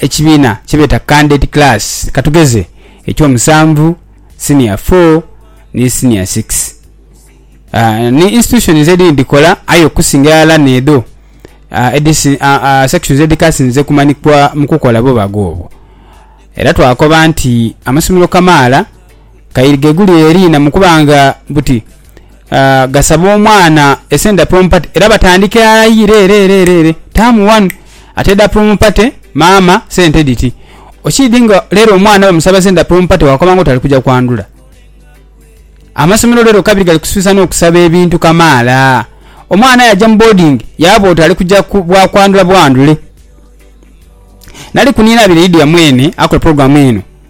Ekibiina kye beeta Canded Class, ka tugeze eky'omusanvu, Senior Four ni Senior Six. Ni institutions edhindhi dhikola aye okusinga irala n'edho sections edhikasinze kumanhikwa mu kukola bubaga obwo. Era twakoba nti amasomero kamaala. Kaire gheguli eri na mukuba nga buti gasaba omwana esente dha promo party era batandika irala ire ere ere ere ere term one ate edha promo party maama sente dhiti okiidhi nga lero omwana bamusaba sente dha promo party wakoba nga oti ali kuja kwandhula. Amasomero lero kabiri gali kusibisa n'okusaba ebintu kamaala. Omwana aye aja mu boarding yaaba oti ali kuja bwa kwandhula bwandhule. Nali ku Nina Abiri Lydia mwene akola pulogulaamu eno.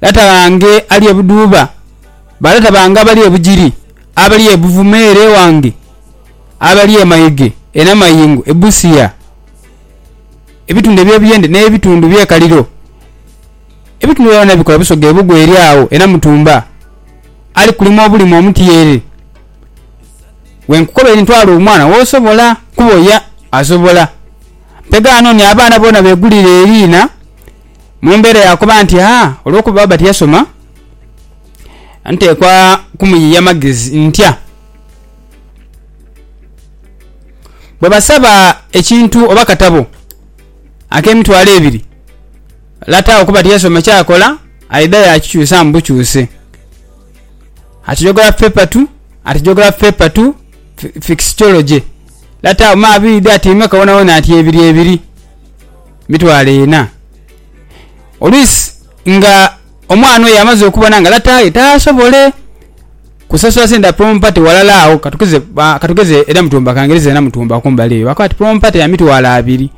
Lata bange ali e Budhuba, balata bange abali e Bugiri, abali e Buvuma ere ewange, abali e Maige, e Namayingo, e Busia, ebitundu eby'ebiyendhe n'ebitundu bye Kaliro, ebitundu ebyo byona bikola busoga e Bugwa eri agho e Namutumba, ali kulima obulime omutyeere. Bwe nkukobaire nti twala omwana w'osobola kuboya, asobola. Mpegha anoone abaana boona beegulire eriina. Mu mbeera ya kuba nti a olw'okuba baba tiyasoma, nteekwa kumuyiia magezi ntya? Bwe basaba ekintu oba katabo ak'emitwalo ebiri, lata okuba tiyasoma ky'akola aidha yaakikyusaamu bukyuse. Ati Geography Paper Two, Ati Geography Paper Two, Fixitology, Lata uma abiri dha ati imwe ka wonawona ati ebiri ebiri. mitwalo ena. Oluisi nga omwana oyo amaze okubona nga lataye tasobole kusasula sente dha prompate walala agho katugeze katugeze edha mutumba kangereza edha mutumba kumbali eyo bakoba ti prompate ya mitwalo abiri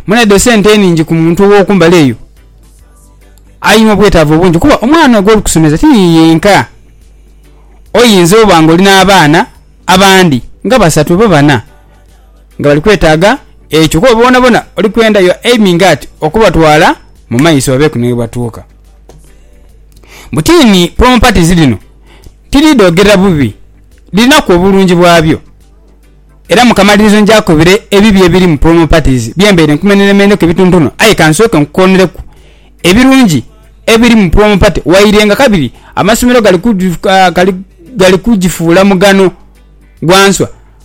mwene edho sente ningi ku muntu owo kumbali eyo aina obwetavu bungi kuba omwana gwo likusomesa ti yiye yenka oyinza oba nga oli na baana abandi nga basatu oba bana. nga bali kwetaaga ekyo, kuba boonabona oli kwenda your aiming at okubatwala mu maiso babeeku ni ghebatuuka. Butiini prompatizi dhino tidhi dhogerera bubi, dhirinaku obulungi bwabyo. Era mu kamalirizo nja kukobera ebibi ebiri mu prompatizi bye mbaire nkumeneremeneku ebituntunho aye ka nsooke nkukoonreku ebirungi ebiri mu prompati waire nga kabiri amasomero gali kugi, gali kugifuula mughano gwa nswa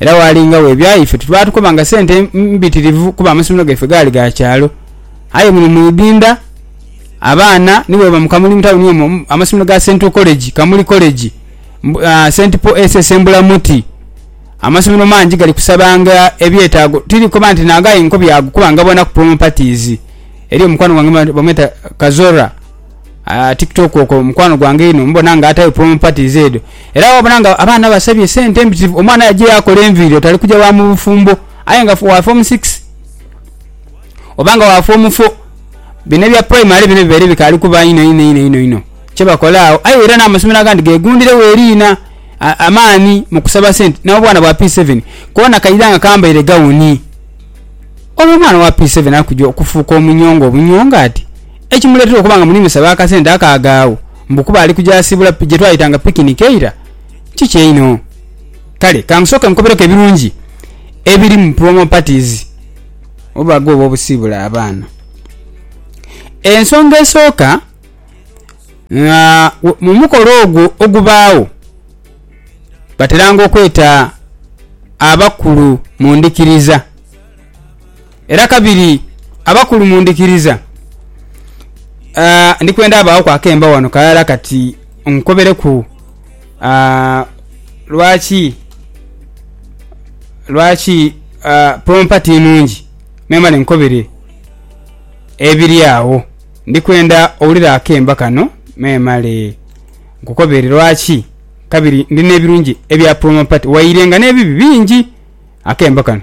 Era waalingawo ebya ife twe baatukoba nga sente mbitirivu kuba amasomero gaife gaali ga kyalo. Aye muno mu Ighinda abaana ni bwebaba mu Kamuli mu tauni omwo, amasomero ga Central College, Kamuli College, Saint Paul SS e Mbulamuti, amasomero mangi gali kusabanga ebyetaago. Tiri kukoba nti naago aye nkobye ago kuba ngaboonaku promo parties. Eriyo mukwano gwange bamweta Kazora. ah, tiktok okwo mukwano gwange einho mubona nga atayo promo parties edho era wabona nga abaana basabye sente mpitirivu omwana yaje yakola enviiri oti ali kuja wa mu bufumbo aye nga wa form six oba nga wa form four bino ebya primary bino bibaire bikaali kuba inho inho inho inho inho kyebakola agho aye era n'amasomero agandi gegundiregho eriina a- amaani mu kusaba sente n'obwana bwa p seven koona kaidha nga kambaire gawuni olwo omwana owa p seven ali kuja okufuuka omunyonga obunyonga ati Ekimuleetera okuba nga muli musaba akasente ako aghaagho mbu kuba ali kuja siibula gye twayitanga pikiniki eira, kiki einho? Kale ka nsooke nkukobereku ebirungi ebiri mu promo parties oba ghoba obusiibula abaana. Ensonga esooka, nga mu mukolo ogwo ogubaagho, bateranga okweta abakulu mu ndhikiriza. Era kabiri abakulu mundhikiriza, ndi kwenda abaaghoku akemba ghano kalala kati nkobereku lwaki lwaki pompa ti nnungi memale nkobere ebiri agho. Ndi kwenda owulire akemba kano memale nkukobere lwaki kabiri ndi n'ebirungi ebya pompa ti waire nga n'ebibi bingi. Akemba kano.